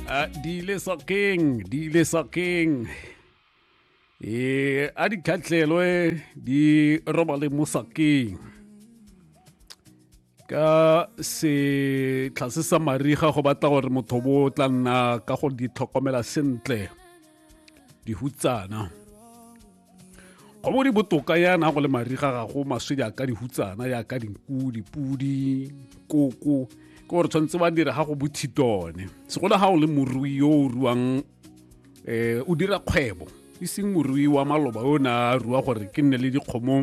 a di ile sokeng di ile sokeng e a di khatlelwe di robale mo sokeng ka setlha se sa mariga go batla gore motho bo tla nna ka go di tlhokomela sentle dihutsana go bo di botoka yana go le mariga ga go maswe jaaka dihutsana jaaka dinku dipudi koko ke gore tshwanetse ba dira ga go bothitone segolo ga o le morui yo o ruang um o dira kgwebo e seng morui wa maloba yo o ne a rua gore ke nne le dikgomo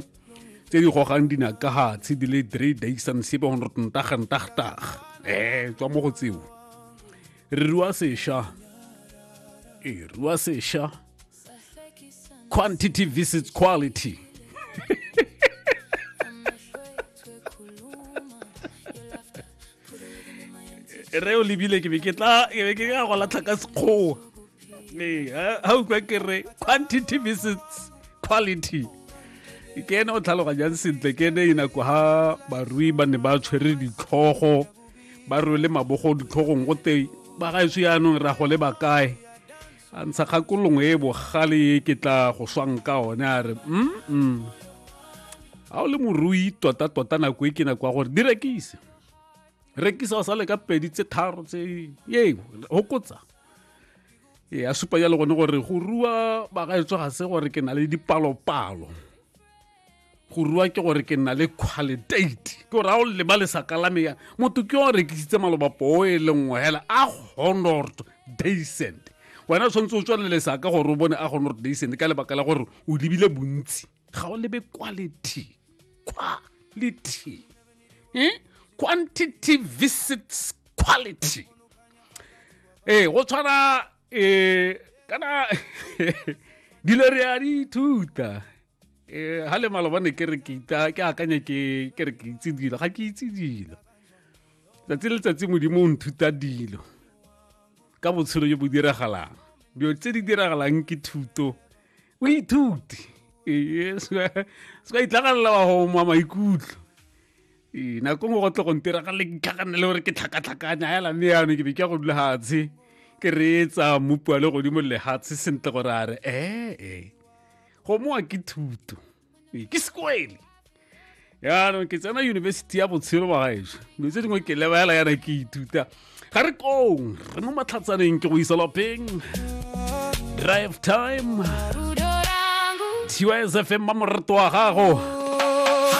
tse di gogang dinakagatshi di le three days and sepe go ntagantagtaga um eh, tswa mo go tseo re rua sesha e rua sesha quantity visits quality re o lebile ke be ke tla ke be ke ka go latlha ka sekgowa ee ga o kwa ke re quantity visits quality ke ene o tlhaloganyang sentle ke ene inako ga barui ba ne ba tshwere ditlhogo ba rwele mabogo ditlhogong go te ba gaetso yaanong ra go le ba kae a ntsha kgakolong e bogale e ke tla go swang ka one a re mm ga o le morui tota-tota nako e ke nako ya gore di rekise rekisa o sa le ka pedi tse tharo tse ye hokotsa e a supa jalo gone gore go rua bagaetso ga se gore ke na le dipalopalo go rua ke gore ke nna le qualitate ke gore a o leba lesaka la meya motho ke o rekisitse maloba poo e le nngwe hela a honord daycent wena o tshwanetse o tswale lesaka gore o bone a honord daycent ka lebaka la gore o lebile bontsi ga o lebe quality quality eh? quantity visits quality ee eh, go tshwana um kana dilo re a di ithuta eh ha le malobane ke re ke ita ke akanya ke ke re ke itse dilo ga ke itse dilo tsatsi le tsatsi modimo o nthuta dilo ka botshelo jo bo diragalang dilo tse di diragalang ke thuto o ithuti ee se ka itlhagalela wa go mwa maikutlo ee nako ngwe go tle go ntiragale ke tlhakanele gore ke tlhakatlhakanya hela mme yano ke be ke go dula hatshe ke reetsa mmupi wa le godimo lehatshe sentle gore a re ee gomoa ke thuto Ee, ke sekwele yaanong ke tsena yunibesithi ya botshelo wa gaešo dilo tse dingwe ke lebaela yana ke ithuta ga re kong re mo matlhatsaneng ke go isa lapeng drive time tys fm ba moreto wa gago